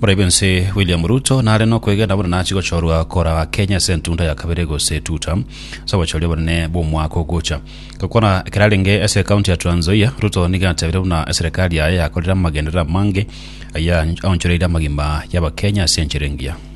Moraibe nse William Ruto nare nokwegena buna nachi gochorwa kora Kenya ase entunda ya kabere gose tuta ase obochoria obonene bw'omwaka ogocha. Gokwana ekerarenge ase ekaunti ya Trans Nzoia, Ruto nigo atebire buna eserekari yaye yakorire amagenderero amange ayia aonchoreire amagima y'Abakenya ase enchera engiya.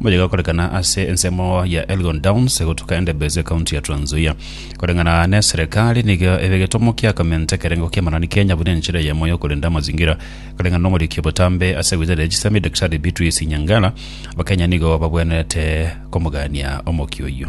Moyo igakorekana ase ensemo ya Elgon Downs gotuka Endebess ekaunti ya Trans Nzoia. Koreng'ana neserekari nigo ebe egetomo kia kominta ekerengo kia Manani Kenya buna enchera eyemo yokorenda amazingira. Koreng'ana nomoriki obotambe ase wizara ya chisemi Daktari Beatrice Nyangala, Abakenya nigo babwenerete komogania omokia oyio.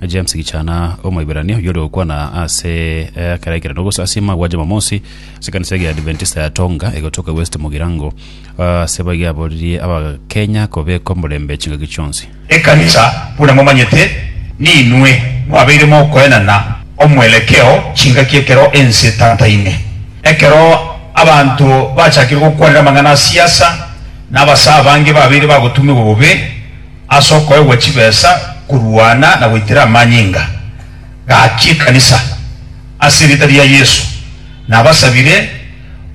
James Gichana, Omoiberania oyio ore gokwana ase ekeraekerano gose ase amagwa Jumamosi ase ekanisa ege ya Adventista ya Tonga egotoka West Mugirango ase baiga aboririe Abakenya kobeka omorembe chingaki chionsi. Ekanisa, buna momanyete, ninwe mwabeire mokoenana omwerekeo chingaki ekero ense etantaine, ekero abanto bachakire gokwanera amang'ana a siasa, na abasee abange babeire bagotumirwa bobe, Ase okoegwa chibesa korwana na goitera amanyinga, gaki ekanisa ase erieta ria Yesu. Nabasabire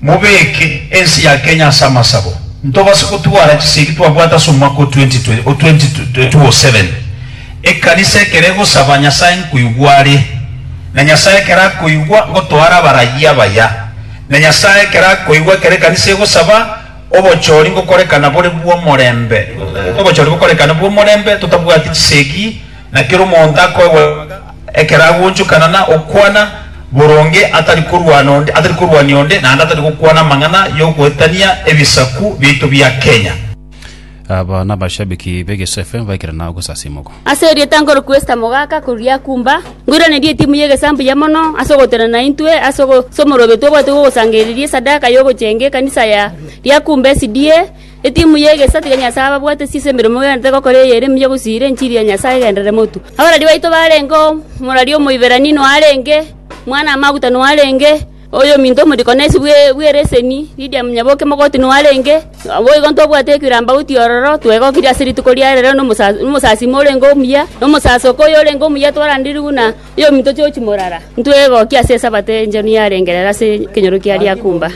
mobeke ense ya Kenya ase amasabo ntobase gotwara chisegi twabwate ase omwaka o 2027. Ekanisa ekero egosaba Nyasae nkoigwa are, na Nyasae ekero akoigwa ngotoara abarayia abaya, na Nyasae ekero akoigwa ekero ekanisa egosaba, Obochori ngokorekana bore bw'omorembe, obochori bokorekana bw'omorembe, totabwati chisegi, na kera omonto akoegwa ekero agonchokana na okwana boronge, atari korwana onde, atari korwania onde, naende atari gokwana amang'ana y'ogoetania ebisaku biaito bia Kenya. Aba nabashabiki b'egesafe mbaikerana ogosasiima oko. Ase erieta nkorokwa Esta mogaka korwa Yakumba, nkoiranerie etimu y'egesamu buya mono ase ogotenena intwe ase omorobe tobwate bw'ogosangerereria esadaka y'ogocheenga ekanisa ya Yakumba SDA, etimu y'egesa tiga Nyasae ababwate ase ase emeremo mwegenete gokora eye ere mbuya gosiira enchiri ya Nyasae egenderere motu. Abarwari baito barenge, omorwari omoiberani noarenge, mwana amaguta noarenge, Oyominto omoriko na esibwe bw'ereseni, Lidia monyabookia mogoti noarenge. Naboigo ntobwate ekirambaguti ororo twegokirie ase rituko ria rero na omosasima orenge omuya, na omosasoka oyorenge omuya twarandirigwe na oyominto George Morara. Ntwegokia ase Esabato enchenu yarenge rero ase ekenyoro kia Lyakumba.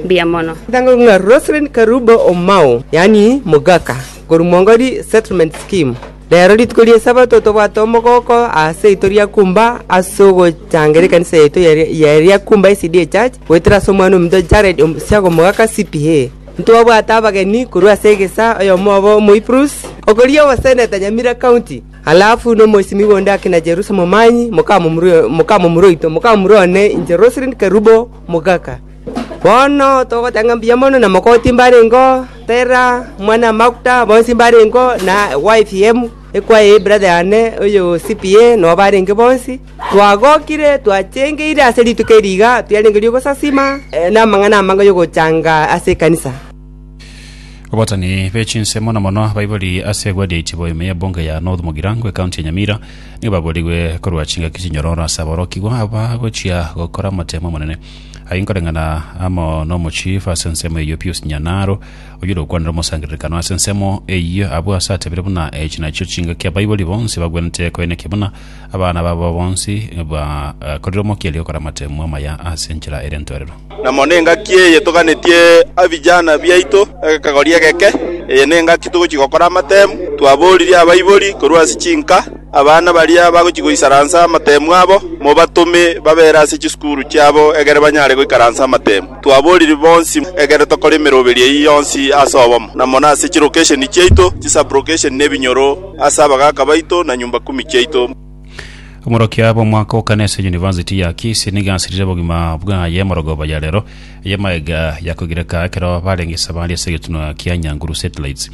Mbuya mono. Ntango ng'a Roselyn Karubo Omao, yaani Mogaka, korwa Mwongori Settlement Scheme. Rero rituko ri'Esabato tobwate omogooko aseito ria kumba ase ogochangera ekanisa yaito ya kumba SDA Church, goetera ase omwana ominto Jared omosiaga omogaka CPA. Ntwabwate abageni korwa ase egesaa, oyomo obo Omoiprus, okoria ogoseneta Nyamira County, alafu nomoisimigwa onde akina Jerusa Momanyi, mokamomura oito, mokamomura one inche Roselyn Kerubo, mogaka. Bono togotanga mbuya mono na mogoti mbarengeo, Tera, omwan'amaguta, bonsi mbarengeo, na YPM, ekwaye y'ebrather yane oyo CPA, nabo barenge bonsi. Twagokire, twachengeire ase rituko eri iga, twerenge ri'ogosasima namang'ana amange y'ogochanga ase ekanisa. Abatani be chinsemo na mono abaibori ase egwadi ya itibo ime y'ebunge ya North Mogirangwe ekaunti ya Nyamira nigo baborigwe korwa chingaki chinyororo ase aborokigwa aba gochia gokora amatemo amanene Aye nkoreng'ana amo nomochifu ase ensemo eyio Pius Nyanaro, oyore okwanera omosangererekano ase ensemo eyio abwo ase atebire buna echi nachio chingaki abaibori bonsi bagwenerete koenekia buna abana babo bonsi bakorire omokia ri'okora amateemwa amaya ase enchera ere entoorero. Na mono engaki eye toganetie abijana biaito egekagori egeke, eye nengaki togochia gokora amateemu, twaboririe abaibori korwa ase chinka, Abana baria bagochia goisaransa amatemu abo, mobatome babe ere ase chisukuru chiabo egere banyare goikaransa amatemu. Twabooriri bonsi egere tokore emeroberi eyio yonsi ase obomo, na mono ase chilokesheni chiaito, chisablokesheni na ebinyoro, ase abagaaka baito na nyumba kumi chiaito. Omorokia bw'omwaka o kane ase University ya Kisii nigo asirire obogima bwaye emorogoba ya rero y'amaega ya kogereka ekero barenge esabari ase egetunwa kia Nyanguru Satellites.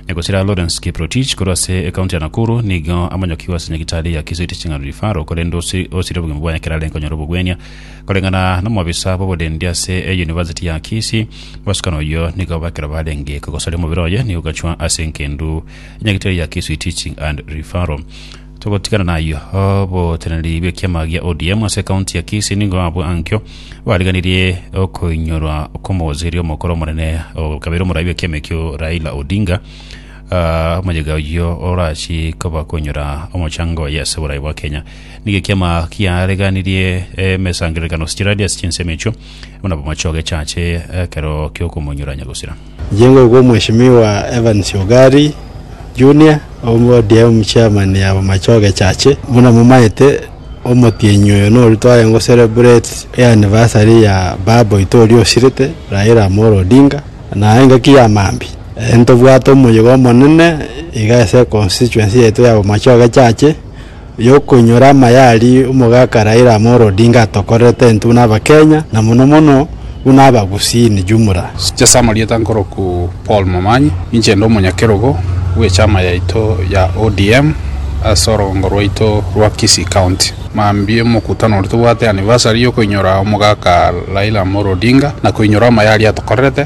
Egosira Lawrence Kiprotich korwa ase ekaunti ya Nakuru nigo amonyokigwe ase nyagitari ya Kisii Teaching and Referral korende osi- osire obogima bwaye ekero arenge konyora obogwenia. Koreng'ana nomobisa bw'oborendi ase eyunivasiti ya Kisii, mosukani oyio nigo ekero barenge kogosaria omobere oye nigo gachwa ase engendu y'enyagitari ya Kisii Teaching and Referral. Togotigana nayio, oboteneneri bw'ekiama gia ODM ase ekaunti ya Kisii nigo abwo ankio bariganirie okoinyorwa kw'omogoseria omokoro omonene okabeire omorai bw'ekiama ekio Raila Odinga, ah, omoyega oyio orachi koba koinyora omochango oye ase oborai bwa Kenya. Nigo ekiama kiareganirie emesangererekano chiraria ase chinsemo echio buna bomochoge chache ekero kiokomoinyora nyagosira. Mjengo okwo Mheshimiwa Evans Ugari Junior, ODM Chairman ya Bomachoge Church, buna momaete, omotienyi oyo noru tware go celebrate eanniversary ya baba oito oria osirete, Raila Amolo Odinga, na engaki ya maambia. Ntobwate omoyega omonene iga ase econstituency yaito ya Bomachoge Church. yokoinyora amaya aria omogaka Raila Amolo Odinga atokorerete intwe buna Abakenya na mono mono buna Abagusii in jumla. Chase amarieta nkoroku Paul Momanyi, ninche inde omonyakerogo bw'echama yaito ya ODM ase orogongo rwaito rwa Kisii County. Mambia omokutano oria tobwate anniversary yokoinyora omogaka Raila Amolo Odinga na koinyora amaya aria atokorerete.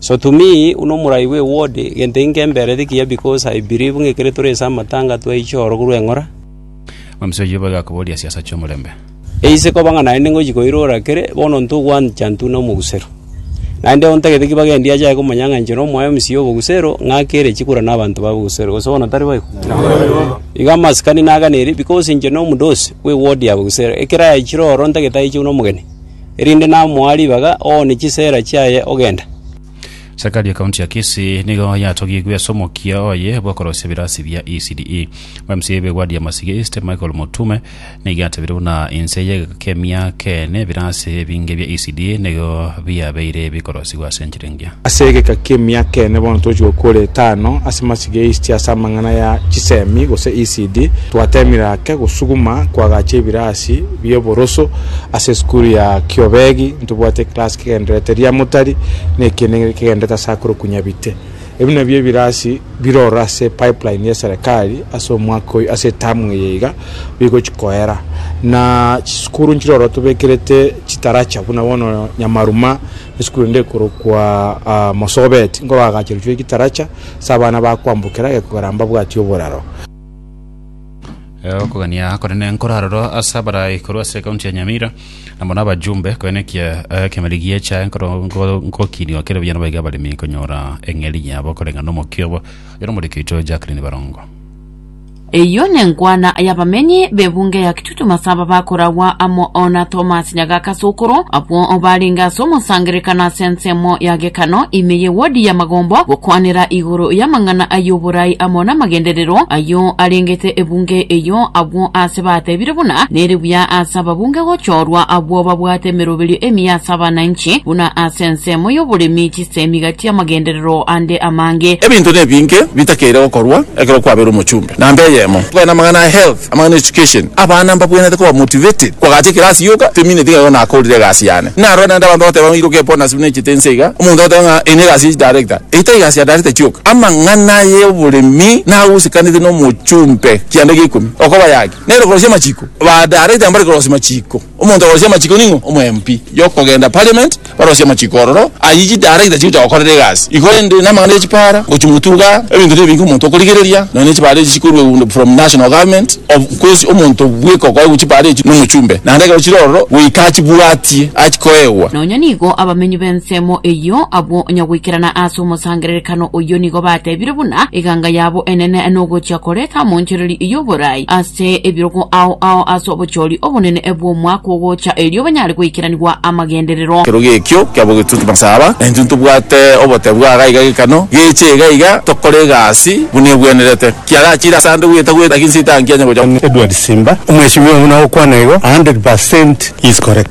So to me, buna omorai bwe word, egento inke mbereti kiya because I believe ng'a ekero tore ase amatanga twaiche oro korwa eng'ora. Omosie oyio boigo akoboria siasa chi'omorembe. Eise koba ng'a naende ngochia koirora kere, bono ntogwancha ntune omogusero. Naende ontagete ki bagendi ache aye komonyang'anychora omwae omosie obogusero, ng'ake ere chikura na abanto ba bogusero, gose bono tari boigo? Igo amasikani naganeirie, bikos inche na omodosi bwe ward ya bogusero, ekero aechire oro ntagete aiche buna omogeni, erinde namoa ribaga, oone chisera chiaye ogenda. Serikali ya county ya Kisii nigo yatogigwe ase omokia oye bw'okorosia ebirasi bia ECDE. Omc be ward ya Masige East, Michael Motume, Nigo yatebire buna inse y'egekemia keene ebirasi ebinge bia Isidi nigo biabeire bikorosigwa ase enchera engiya. Ase egeka ki'emia keene bono tochia gokora etano ase masiga ya Isidi ase amang'ana ya chisemi gose Isidi. Twateemire ake gosuguma koagacha ebirasi bi'oboroso ase esukuru ya Kiobegi, ntobwate eclass kegendererete Riamotari na ekiene kegendererete ase akoro Kunyabite. Ebi nabio ebirasi biroro ase pipeline ya eserekari ase omwaka oyio ase etamu eye iga bigochi koera na chisukuru nchiroro tobekerete chitaracha buna bono Nyamaruma esukuru ende ekorokwa Mosobet nkoroagacherwa chire chitaracha ase abana bakoambokera egekogera mbabwati oboraro. Eh, okogania konene nkoraroro ase abarai korwa ase ekaunti ya nyamira na mono abajumbe koenekia eh, kemeri gie echae nkoro nko- nkokinio kere buya nabaiga abaremi konyora eng'eri yabo koreng'a nomokia obo yero omoriki oito jacklin barongo Eyio nenkwana y'abamenyi b'ebunge ya Kitutu Masaba bakoragwa amo na Thomas Nyagaka As'okoro abwo barenge as'omosangererekano as'ensemo ya Gekano, ime y'Ewodi ya Magombo, gokwanera igoro y'amang'ana ay'oboraai amo namagenderero ayio arengete ebunge eyio, abwo aase batebire buna nere buya as'ababunge gochorwa abwo babwate emeroberio emiya as'abananchi, buna as'ensemo y'oboremi chisemi gati amagenderero ande amange. Ebinto nebinge bitakeire gokorwa ekero kwabeire omochumbe, na mbe eyemo. Kogenda amang'ana a health. Amang'ana Education, Abana mbabwenerete koba motivated koagacha ekerasi yoka, temineti ng'a igo nakorire egasi yane. Narora naende abanto bagoteba ng'a iroka epona ase buna echete ense iga, omonto agoteba ng'a eye negasi ya chidarector. Eye tari egasi ya darector kioka. Amang'ana aya oboremi nagosekanete nomochumbe kianda gia ikomi. Okoba yaki nere korosia amachiko. Ba darector mbare korosia machiko. Omonto okorosia amachiko ning'o? Omwmp yokogenda parliament barosie amachiko ororo ayio chidarakita chigocha gokorera egasi igo rende namang'ana ya chipara gochi motuga ebinto nebinge omonto okorigereria nonya ne chipara echi chikorwa egundo from national government of course omonto bweka okoegwa chipara echi nomochumbe naende ekero chire ororo goika achibwatie achikoegwa. Nonya nigo abamenyi b'ensemo eyio abwo onya goikerana ase omosangererekano oyio nigo batebire buna eganga yabo enene nogochia koreta amonchoreria y'oboraai ase Ase ebirogo ao ao ase obochori obonene bw'omwaka ogocha, erio banyare goikeranigwa amagenderero. Kerogo ekio kiabo getutu masaba, na intwe ntobwate obotebi bwa gaiga gekano geche iga iga, tokore egasi buna egwenerete. Kiagachire ase ande gweta gweta, gaki nsitanki anye gocha. Edward Simba, Omweshimiwa buna ogokwana igo, 100% he is correct.